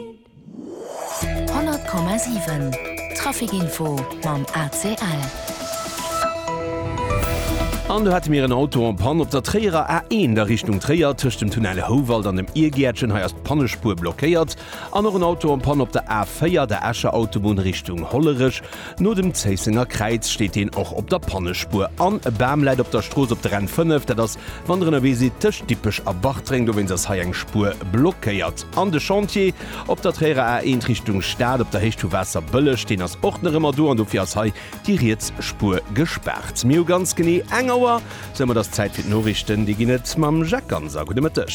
100,7 Trafic Info mam ACL. An do hate mir en Auto en Panne op der Tréierer A1 a Richtung Tréier, tëscht dem Tunnel Houwald an dem Iergäertchen. Hei ass d'Pannespuer blockéiert. An och en Auto en Panne op der A4, der Escher Autobunn Richtung Hollerech. No dem Zéissenger Kräiz steet een och op der Pannespuer an e Bam läit op der Strooss op der N 5. Dat ass, wann der ënnerwee sidd tëscht Dippech a Bartreng. Dowéinst ass hei eng Spuer blockéiert. An de Chantier op der Tréierer A 1 Richtung Stad op der Héicht vu Waasserbëlleg, deen ass och nach ëmmer do an dofir ass hei déi riets Spuer gespaart. Mir hu ganz genee eng Auer Sou, et ass Zäit fir d'Noriichten. Déi ginn et mam Jacques Ganser. Gudde Mëtteg.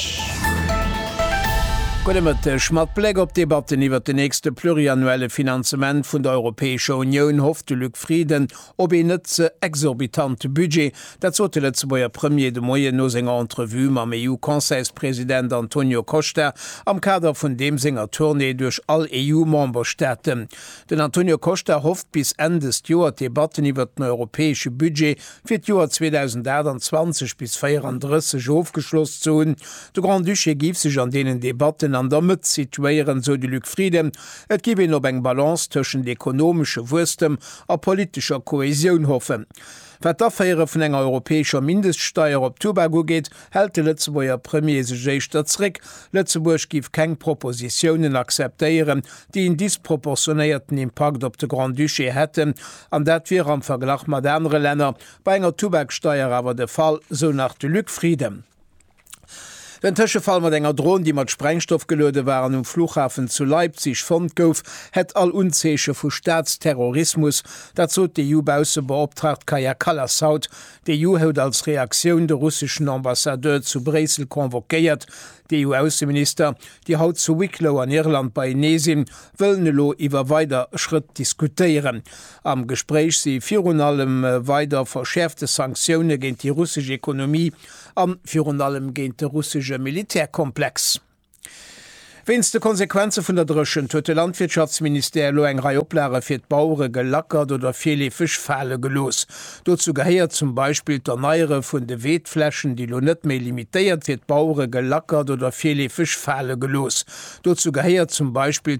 Gudde Mëtteg. Mat Bléck op d'Debatten iwwert de nächste pluriannuelle Finanzement vun der Europäescher Unioun hofft de Luc Frieden op een net ze exorbitante Budget. Dat sot de Lëtzebuerger Premier de Moien no senger Entrevue mam EU-Conseilspresident Antonio Costa am Kader vun deem senger Tournée duerch all EU-Memberstaaten. Den Antonio Costa hofft bis Enn dëst Joer d'Debatten iwwert den europäesche Budget fir d'Joer 2028 bis 34 ofgeschloss ze hunn. De Grand-Duché giff sech an deenen Debatten an der Mëtt situéieren, sou de Luc Frieden. Et giff een op eng Balance tëschent ekonomesche Wuesstem a politescher Kohäsioun hoffen. Wat d'Aféiere vun enger europäescher Mindeststeier op Tubak ugeet, hält de Lëtzebuerger Premier sech éischter zréck. Lëtzebuerg giff keng Propositiounen akzeptéieren, déi en disproportionéierten Impakt op de Grand-Duché hätten, an dat wier am Verglach mat anere Länner bei enger Tubaksteier awer de Fall, sou nach de Luc Frieden. Den Tëschefall mat enger Dron, déi mat Sprengstoff geluede war an um Fluchhafen zu Leipzig fonnt gouf, hätt all Unzeeche vu Staatsterrorismus, dat sot d'EU-Baussebeoptraagt Kaja Kallas haut. D'EU hout als Reaktioun de russeschen Ambassadeur zu Bréissel convoquéiert. D'EU-Ausseminister déi haut zu Wicklow an Irland beienee sinn, wëllen elo iwwer weider Schrëtt diskutéieren. Am Gespréich si virun allem weider verschäerfte Sanktioune géint déi russesch Ekonomie a virun allem géint de russesche Militärkomplex. Wéinst de Konsequenze vun der Dréchent huet de Landwirtschaftsministère elo eng Rei Oplage fir d'Bauere gelackert oder virleefeg fale gelooss. Dozou gehéiert zum Beispill d'Erneiere vun de Weedflächen, déi elo net méi limitéiert fir d'Bauere gelackert oder virleefeg fale gelooss. Dozou gehéiert zum Beispill.